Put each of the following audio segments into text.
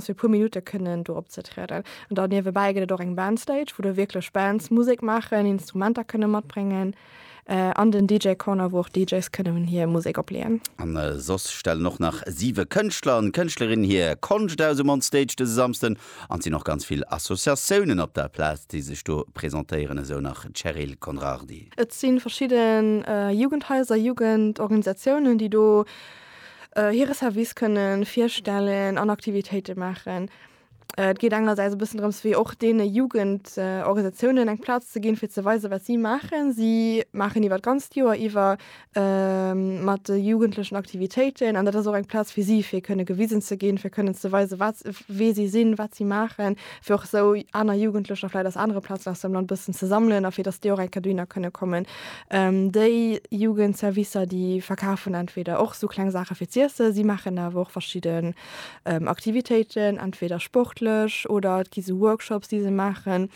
fir e puer Minutte kënnen do opzetrieden. An dann niewebäi gëtt et och eng Bandstage, wou da wierklech Bands Musek maachen, Instrumenter kënne matbréngen, an den DJ Corner, wou och DJs kënnen hir Musek opleeën. An soss stellen och nach siwe Kënschtler an Kënschtlerinnen hir Konscht aus um On Stage dëse Samsden. An et sinn och ganz vill Associatiounen op der Plaz, déi sech do presentéieren, esou nach d'Cheryl Conrardy. Et si verschidden Jugendhaiser, Jugendorganisatiounen, déi do. hire Service kënne virstellen an Aktivitéite maachen. Et geet engersäits e bëssen drëms, wéi och deene Jugendorganisatiounen eng Plaz ze ginn, fir ze weisen, wat si maachen. Si maachen iwwer d'ganzt Joer iwwer mat de Jugendlechen Aktivitéiten. An dat ass och eng Plaz fir si, fir kënne gewisen ze ginn, fir kënnen ze weisen, wat, wie si sinn, wat si maachen. Fir och esou aner Jugendlecher vläicht aus anere Plazen aus dem Land e bëssen ze sammelen a fir datt déi och eng Kéier dohinner kënne kommen. Déi Jugendservicer, déi verkafen entweder och esou kleng Saache fir z'iessen, si maachen awer och verschidden Aktivitéiten, entweder sportlech oder et gi sou Workshops, déi se maachen,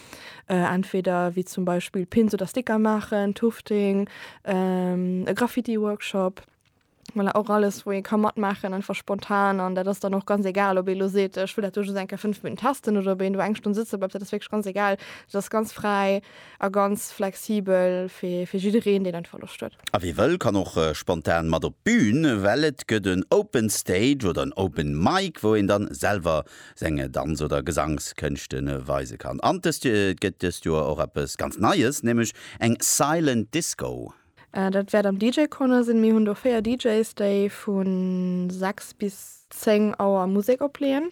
entweder wéi zum Beispill Pins oder Sticker maachen, Tufting, e Graffiti-Workshop. Voilà, och alles wou ee ka matmaachen, einfach spontan an dat ass dann och ganz egal ob ee lo seet ech wëll dat do just eng Kéier 5 Minutten testen oder ob een do eng Stonn sëtze bleift, dat ass wierklech ganz egal. Dat ass ganz fräi a ganz flexibel fir fir jiddereen, deen einfach Loscht huet. A wie wëll kann och spontan mat op d'Bün, well et gëtt en Open Stage oder en Open Mic wou een dann selwer seng Danz oder Gesangskënschte weise kann. An et gëtt dëst Joer och eppes ganz Neies, nämlech eng Silent Disco. Dat wäert am DJ Corner sinn. Mir hunn do 4 DJs, déi vu 6 bis 10 Auer Musek opleeën.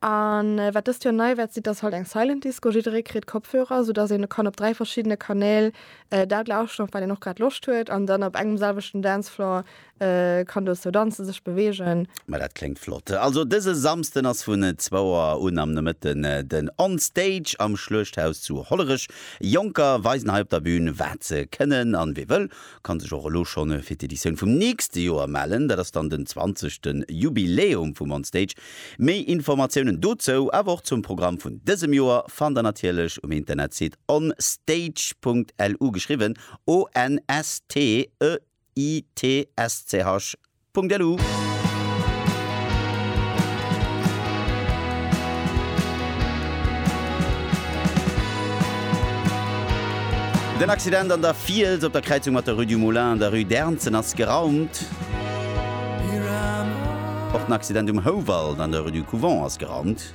A wat dëst Joer nei wäert sinn, ass halt eng Silent Disco. Jidderee kritt Kopfhörer, sou dass een kann op 3 verschiddene Kanäl dat lauschteren, op wat een och grad Loscht huet, an dann op engem selwechten Dancefloor Kann dozou danzen, sech beweegen. Ma dat kléngt flott. Also dëse Samsden ass vun zwouer un am Nomëtten den On Stage am Schluechthaus zu Hollerech. Jonker weisen hei op der Bühn wat se kënnen an wee wëll kann sech och elo schonn fir d'Editioun vum nächste Joer mellen. Dat ass dann den zwanzegste Jubiläum vum On Stage. Méi Informatiounen dozou awer och zum Programm vun dësem Joer fannt der natierlech um Internetsite onstage.lu, geschriwwen ONSTEGE. www.itsch.lu. Den Accident an der Fiels op der Kräizung mat der Rue du Moulin an der Rue d'Ernzen ass geraumt. Och den Accident um Houwald an der Rue du Couvent ass geraumt.